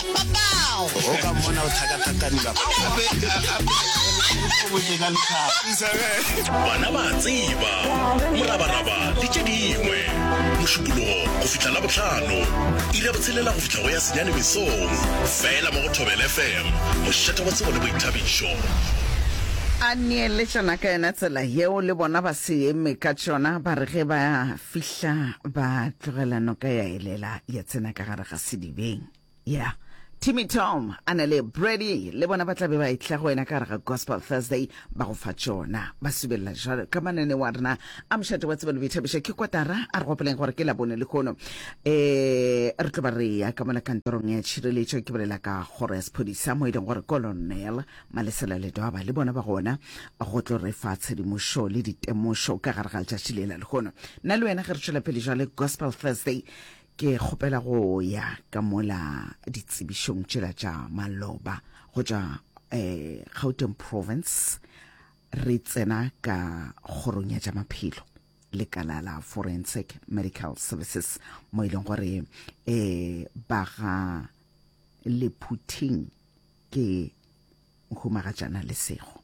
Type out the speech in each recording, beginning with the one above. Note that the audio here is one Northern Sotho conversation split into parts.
o ka mmona o thakathakaniba bana ba tseba morabaraba le tše dingwe mošupologo go fihla la botlhano ira botshelela go fihla go ya senyane mesong fela mo go thobel fm mošeta wa tsebo le boithabišo a neeletšana ka yona tsela yeo le bona ba se eme ka tšona ba re ge ba fihla ba tlogela noka ya elela ya tsena ka gare ga sedibeng yeah timmy tom a na le brady le bona ba tla be ba etla go wena ka gare ga gospel thursday ba go fa tšona ba subelela jalo ka manene wa rena a mošate wa tsebelo boithabiša ke kotara a re gopoleng gore ke labone le kgono um re tlo ba re ya ka mola kantorong ya tšhireletšo ke bolela ka kgoro ya sephodisa mo e leng gore kolonel malesela ledwaba le bona ba gona go tlo re fa tshedimošo le ditemošo ka gare ga letšatši le la lekgono nna le wena ge re tšwela pele jale gospel thursday Ke kgopela go ya ka mola ditsebišong tšela tša maloba go tšwa eh, Gauteng province re tsena ka kgorong ya tša maphelo lekala la forensic medical services mo e leng gore eh ba ga lephuthing ke humagatšana lesego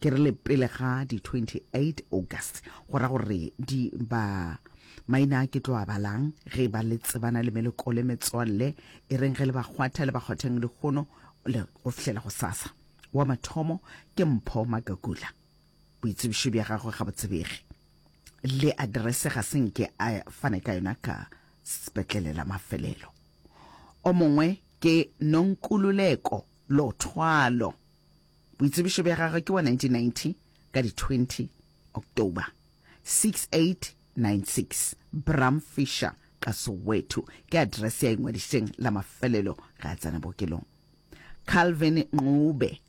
Ke re le pele ga di 28 August go ra gore di ba maina a ke tlo a balang ge ba le tsebana le meleko le metswalle e reng ge le ba kgwatha le ba kgwatheng le gono le go fihlela go sasa wa mathomo ke mpho magagula boitsebišo bja gagwe ga botsebege le address ga se nke a fane ka yona ka sepetlele la mafelelo o mongwe ke nonkululeko lothwalo Boitsebišo bja gagwe ke wa 1990 ka di 20 October 6896 Bram Fisher ka Soweto ke address ya ingwadišeng la mafelelo ge a tsena bookelong. Calvin Ncube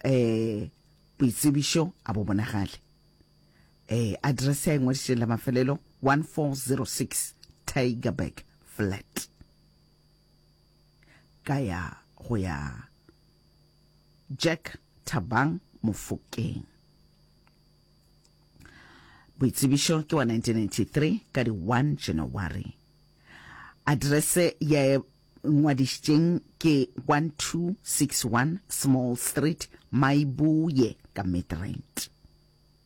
eh boitsebišo a bo bonagale eh address ya ingwadišeng la mafelelo 1406 Tigerberg flat. ka ya go ya Jack Thabang Mofokeng. Boitsebišo ke wa 1993 ka di 1 January. Address ya ngwadišitšeng ke 1261 Small Street, Maibuye ka Midrand.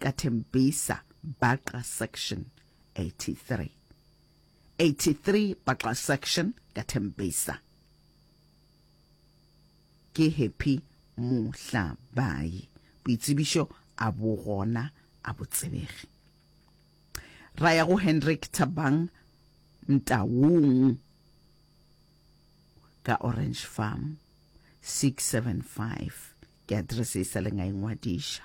ka Tembisa Baqa Section 83. 83 Baqa Section ka Tembisa. Ke Happy Mohlabayi. Boitsebišo a bo gona a bo tsebege. Ra ya go Hendrik Thabang Mtaung ka Orange Farm 675 ke address e sa leng a e ngwadiša.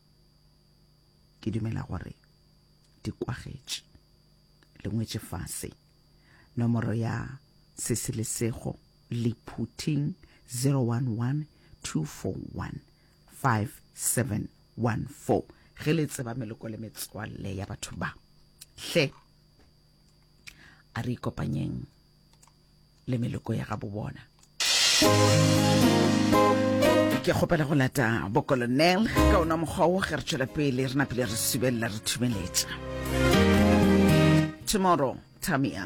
Ke dumela gore di kwagetše, le ngwetše fase. Nomoro ya Sesi le Sego Lephuthing 011 241 5714. Ge le tseba meloko le metswalle ya batho ba, hle a re ikopanyeng. le meloko ya gabo bona ke kgopela go lata bokolonel ka ona mokgwa o ge re tšwela pele re napele re subelela re thumeletša tomorrow tamia